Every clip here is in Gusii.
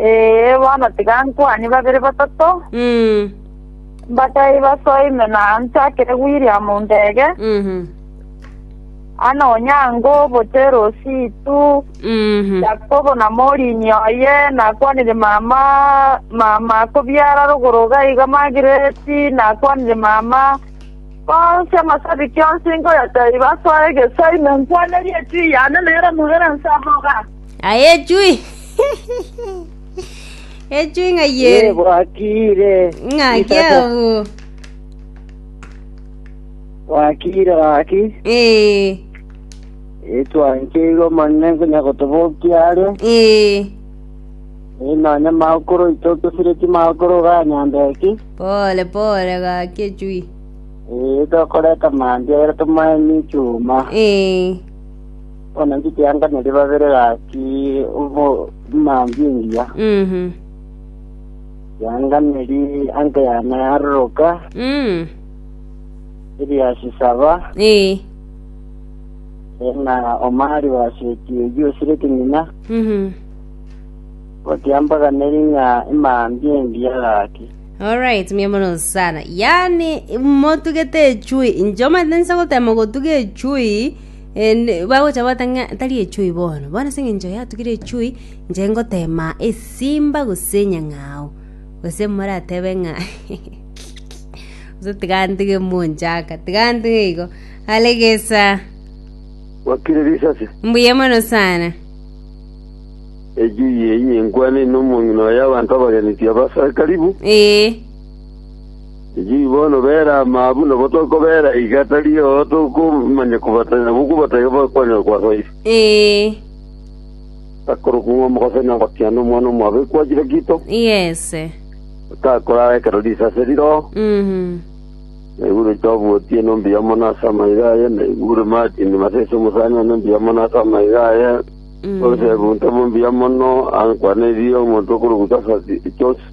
Ee, bono tiga nkwanie babere batato, mbatae basoe ime na nchakere William Ndege, Anna Onyango obote Rositu, Yakobo na Morini oye, nakwanire mama mama kobiara rogoro iga iga Magreti, nakwanire mama, bonsi amasabiki onsi nkoyatae basoe egesoe ime nkwane rietiri yane nere Muheransa Moga. Aye echui echui ng'a Ye yeri bwakire. ng'aki Isata. abwo Bwakire gaki. ee Etwancheirwe omone nkonya gotobokia are. ee Inonye makoro itotosireti makoro ganyambeki. pole pole gaki echui Ee tokoreta mambia ere tomaemi chuma. ee Bono ndikianganeri babere gaki omambia engiya. Mhm. Kianganeri anke yane aroroka, Mm. eriasi saba, Eh. ena omari waseti oyio osire keng'ina, Mhm. gotiambaganeri ng'a emambia engiya gaki. Alright, mia mono sana. Yaani motugete echui. Njoma ndensa gotema gotuga echui And bagocha batang'a tari echui bono, bono ase eng'encho yatugire echui, inche ngoteema esimba gose enyang'ao, gose moratebe ng'a gose tiga ntege monchaka, tiga ntege igo. Are gesa, Wakire risasi. mbuya mono sana. Ejui eye inkwane ino omong'ina oye abanto abageneti abasare karibu. Ee, Inchuo bono bere amaa buna batoka bera iga atario tokomanya kobatanya nabo kobatanya kwanyora kwasoire. Akorokwa ng'a omogosaini ogotiana omwana omwabo ekwachi Lakito, gakorara ekero risa ase riro, na igure oito obuotie na ombuya omono ase amaiga aye, na igure Martini Masese omosani one ombuya mono ase amaiga aye, Yosefu ntomombuya mono, ankwane erio omonto okorokwa Joseph.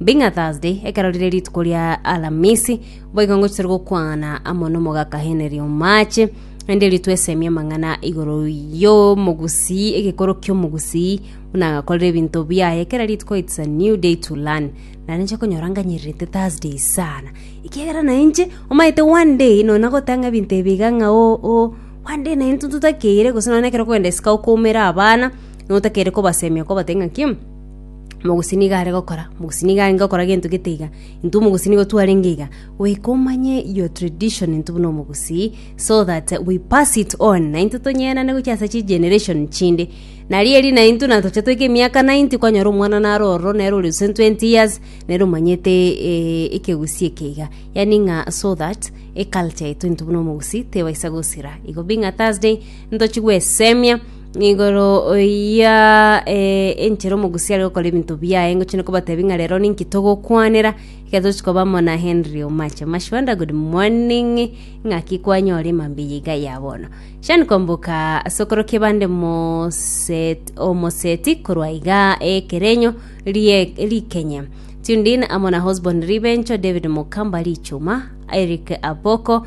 Bing'a Thursday, ekero rire rituko ria Alamisi, boigo ngochire gokwana amo n'omogaka Henry Omache, naende ritwesemie amang'ana igoro y'omogusii, egekoro ki'omogusii, buna agakorera ebinto biaye, kera rituko it's a new day to learn. Nare inche okonyora nganyererete Thursday sana, ekiagera na inche omanyete one day nona gotanga ebinto ebi iga ng'a o o one day na intwe totakeire gose nonye ekero okogenda isiko okoumera abana, notakeire kobasemia kobatebia ng'aki, Omogusii nigo are gokora, omogusii nigo arenge gokora gento gete iga, intwe omogusii nigo twarenge iga, goika omanye your tradition intwe buna omogusii so that we pass it on naintwe tonyeerane gochia ase chigeneration chinde. Nario eri naintwe na tochia toika emiaka 90 kwanyora omwana naro ororo nere ore gose 20 years nere omanyete eh, ekegusii eke iga. Yaani ng'a so that eculture yaito intwe buna omogusii tebaisa gosira. Igo bing'a Thursday ntochie gwesemia, Igoro ya enchera omogusi are gokora ebinto biaye ngochia nokobatebia ng'a rero ninki togokwanera ekero tochi koba amo na Henry Omache. Mashwanda good morning ng'aki kwanyora emambia eye iga ya bono. Shani Kwamboka ase okorokia bande Moset- omoseti korwa iga ekerenyo rie- rikenya. Tuned in amo na Osborn Ribencho, David Mukamba Richuma, Eric Aboko,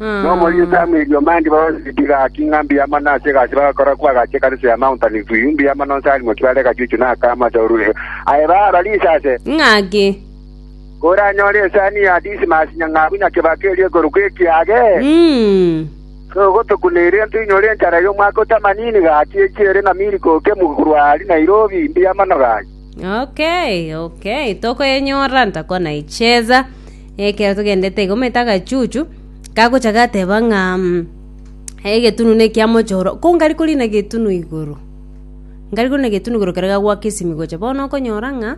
Nomorieta amerio mandi bababebi gaki ng'a mbuya mono ase egasi bagakora kwa agache ekanisa ya Mount Olive View, mbuya mono onsi arimoki bare egachuchu na akamo ase orureo. Aye baaro risase. Ng'ake. Koranyore esani ya Dismas nyang'abu nyakebaka eria ekorokwa ekiage. Mm. Togotokuna eria ntoinyore enchara y'omwaka otamanini gaki echi ere na Milk oke Muruari Nairobi, mbuya mono gaki. Okay, okay. Tokoyenyora ntakona icheza. Ekero togendete igo omanyete agachuchu gagocha gateba ng'a egetunu nekia mochoro ko nkare korina egetunu igoro nkare korina egetunu igoro ekero gagoaka esimi gocha bono okonyora ng'a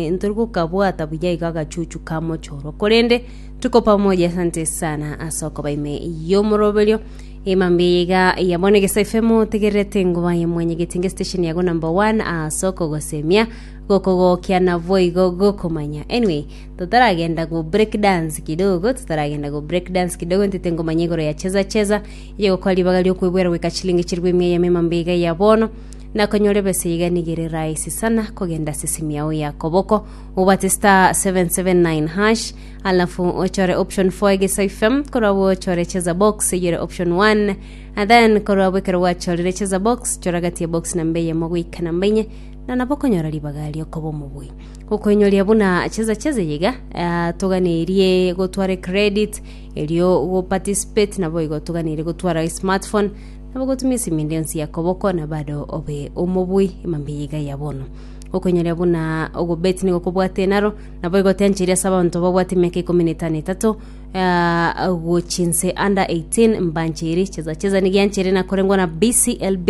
ntori gokabwata buya iga agachuchu ka mochoro korende tuko pamoja asante sana ase okoba ime yomoroberio ime mbuya iga ya bono egesaifm otegererete ngobaye mwanyegete inga estesheni yago number one ase okogosemia. Gokogokia naboigo gokomanya. Anyway, totaragenda go break dance kidogo, totaragenda go break dance kidogo, ntete ngomanya igoro ya cheza cheza, eye gokora ribaga riokwebwera goika chilingi chiribu emia eyemo emambe iga ya bono, nakonyore besa iga niga ere rahisi sana kogenda ase esimi yao ya koboko, obwate star 779 hash, alafu ochore option 4 egesa ifem, korwa abwo ochore cheza box eyere option 1, and then korwa abwo ekero gwachorire cheza box, chora gati ya box namba eyemo goika namba inye, na nabo okonyora ribaga ri'okoba omobui. Gokoinyoria buna chesa chesa iga iga ah, toganerie gotwara credit erio go participate nabo igo toganeire gotwara smartphone nabo gotumia esimi ende yonsi ya koboko na bado obe omobui emambia iga ya bono gokoinyoria buna ogobeti nigo kobwate enaro nabo igo tiancheria ase abanto babwate emiaka ikomi na etano etato ah, gochinse under 18 mbancheri chesa chesa nigiancheri nakorengwa na BCLB